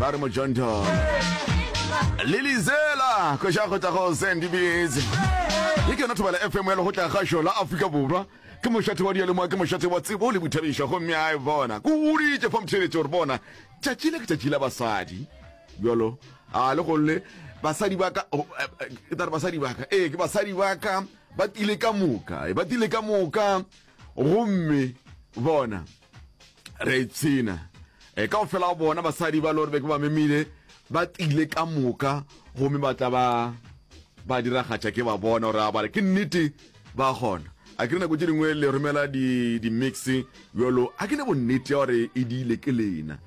ba re mojontho lelizela kweša go tla go sendibs ye ke yona thobela fm ya legotla ga šola aforika borwa ke mošate wa dialemoa ke mošate wa tsebo le boithabišo gomme a e bona ko goditše fa motheletše gore bona tšatši le ke tšatši la basadi bjalo a le golle basadi baka oh, eh, eh, ke tare basadi baka ee ke basadi baka ba tile ka moka eh, ba tile ka moka gomme bona re ipshina e ka go fela go bona basadi ba lore be ke ba memile ba tile ka moka gomme ba tla ba ba diragatša ke ba bona gore a bale ke nnete ba gona a ke nako tse dingwe le romela di-mix di yolo a ke ne bonnete ya gore e diile ke lena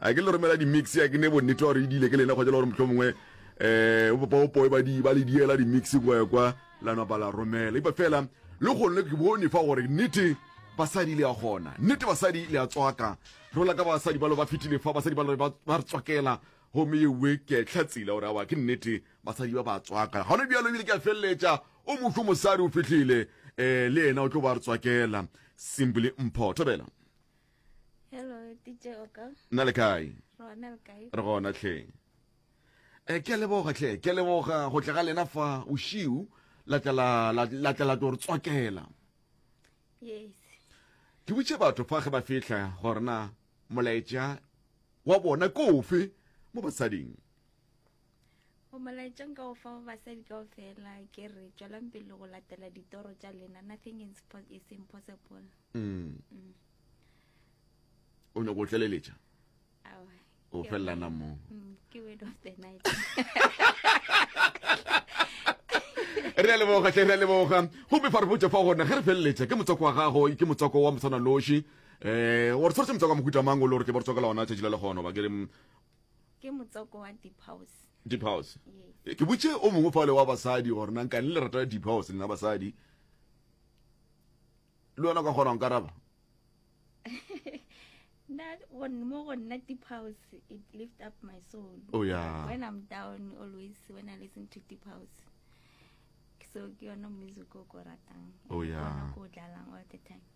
A ke le romela di mix ya ke ne bonnete wa gore e dile ke lena kgotsa le gore motlho mongwe um o popa opoe ba di ba le diela di mix kwa kwa la nwa ba la romela ipa fela le gone ke bone fa gore nnete basadi le ya gona nnete basadi le ya tswaka rola ka basadi ba lo ba fitile fa basadi ba lo ba re tswakela gomme ewe ke tlhatsile gore awa ke nnete basadi ba ba tswaka gone bjalo ebile ke a feleletša o motlho mosadi o fitlhile um le ena o tlo ba re tswakela simply mpho thobela na le kae re gona tlhe e ke leboga tlhe ke leboga go tla ga lena fa ušiu la tla la tore tswakela ke butše batho fa ge ba fihla gorena molaetša wa bona kofe mo basading go molaetšong ka go fa ba basadi kao fela ke re tswelang pele go latela ditoro tša lena nothing is impossible mm. Mm. o nyako o tleleletša o felelana moo mm, ke word of the night re a leboga tle re a leboga gomme fa re botse fa gone ge re feleletša ke motswako wa gago ke motswako wa motshwana loši um wa re tshwaretse motswako wa mohuta mang o le gore ke ba re tswakela ona tšatši la le gona ba ke re ke motsoko wa deep house deep house yes. ke botše o mongwe fale wa basadi gore nang kane le rata deep house lena basadi le wena ka kgonang karaba mo go nna deep house it lift up my soul oh, yeah. when i'm down always when i listen to deep house so ke yone music o ko ratang oh, yeah. ko dlalang all the time